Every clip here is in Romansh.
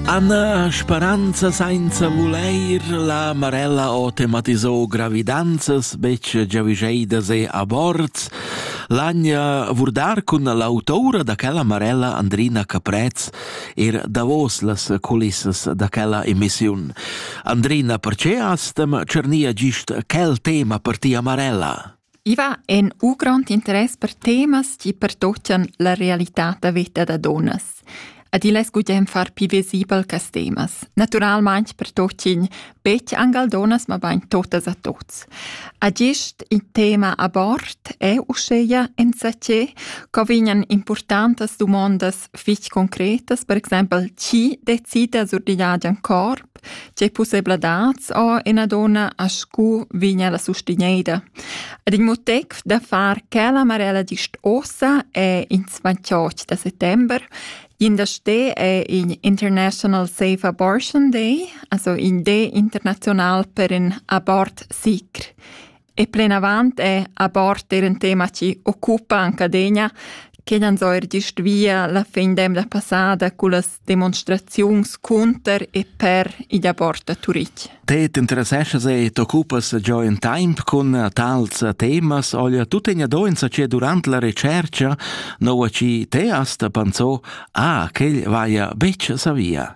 Anna speranza sainza vulair la Marella ho tematisò gravidanzas betg giavüscheidas e aborts. L'Agna vurdar cun l'autora da quella Marella Andrina Caprez er davos las culissas da quella emissiun. Andrina, perché astem cernia gist quel tema per tia Marella? I va en u grond interess per temas chi pertochan la realità da veta da dunnas. Ed il es gugent far pii visibel quist temas. Natüralmaing pertochin betg anc al dunnas, mabain totas a tuots. A gist il tema abort è uschea insatgé co vegnan importantas dumondas fich concretas, per exaimpel chi decida sur digl agen cor, Tgei pussebladats ho ina donna a scu vigna la sustineida? Ed il motiv da far quella marella gist ossa è ins 28 da settember. In da ste è in International Safe Abortion Day, also in day international per in abort sicr. E plenavant è a bord er in tema che occupa anche adegna che han so er gist via la fin d'emna passada con las demonstraziuns cunter e per i da bord a Turich. Te t'interesseschas e t'occupas già in tempo con tals temas olha tu te doenza che durante la ricerca no a ci te asta pensò ah che vaia beccia sa via.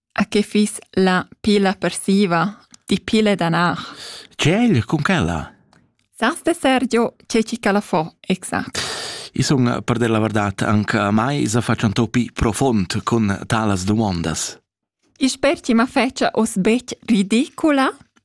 A che fiss la pila persiva? Di pile danar. Tgel, cun quella? Sas de Sergio, c'è ci calafò, exact. I sun, per dir la verdad, anche a mai se faccio un topi profond con talas domandas. I sper ci ma fece os bec ridicula?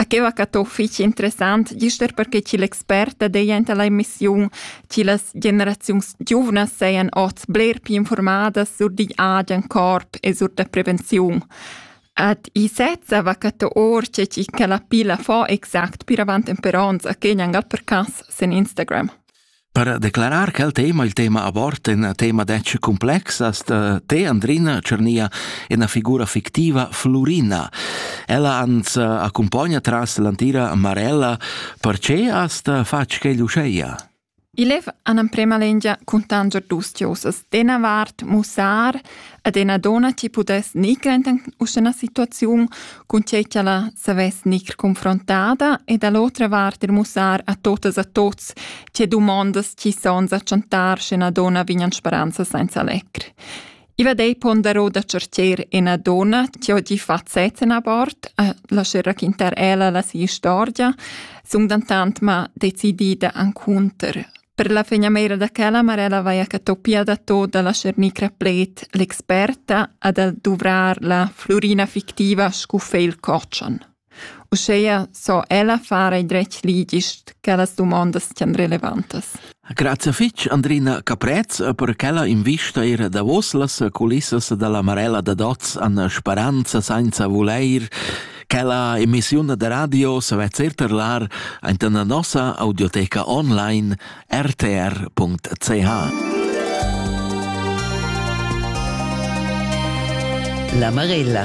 A que va cat fich interessant, gist er perche chi l'experta deja anta la emissiun, chi las generaziuns giuvnas sajan ots bler più informadas sur digl agen corp e sur da prevenziun. Ad i sezza va cat or che chi ca la pila fo exact pir avant temper ons a Kenya gal per cas sen Instagram. Per declarar quel tema, il tema abort, in tema detg complexas, te Andrina Cernia ina figura fictiva Flurina. Ella ans eh, accompagna tras l'antira Marella, perché hast fatg quel uscheia? Il lev an amprema lengia cuntanger dus diosas, dena vart, mussar, Ed ena dona ti pudess nicr enten uschena situaziun, cun tgei ti alla savess nicr confrontada ed all'otra vart il mussar a totas a tots tge dumondas ti sons a chantar sch'ena dona vignan speranza senza lecr. Iva dei pondero da certier ena dona che ho di fazzet en abort, a lascer raquintar ella la sia storia, sung dantant ma decidida ancunter Per la fegnameira da quella Marella vaia catopia da tot da la Cernicra Pled l'experta a da duvrar la flurina fictiva scu feil cotschan. Uscheia so ella fare dretg ligist che las dumondas tian relevantas. Grazie fitch Andrina Caprez per quella invista ir davos las culissas dalla Marella da Doz an speranza senza voleir Quella emissiun da radio sa vezer terlar anta la nossa audioteca online rtr.ch. La Marella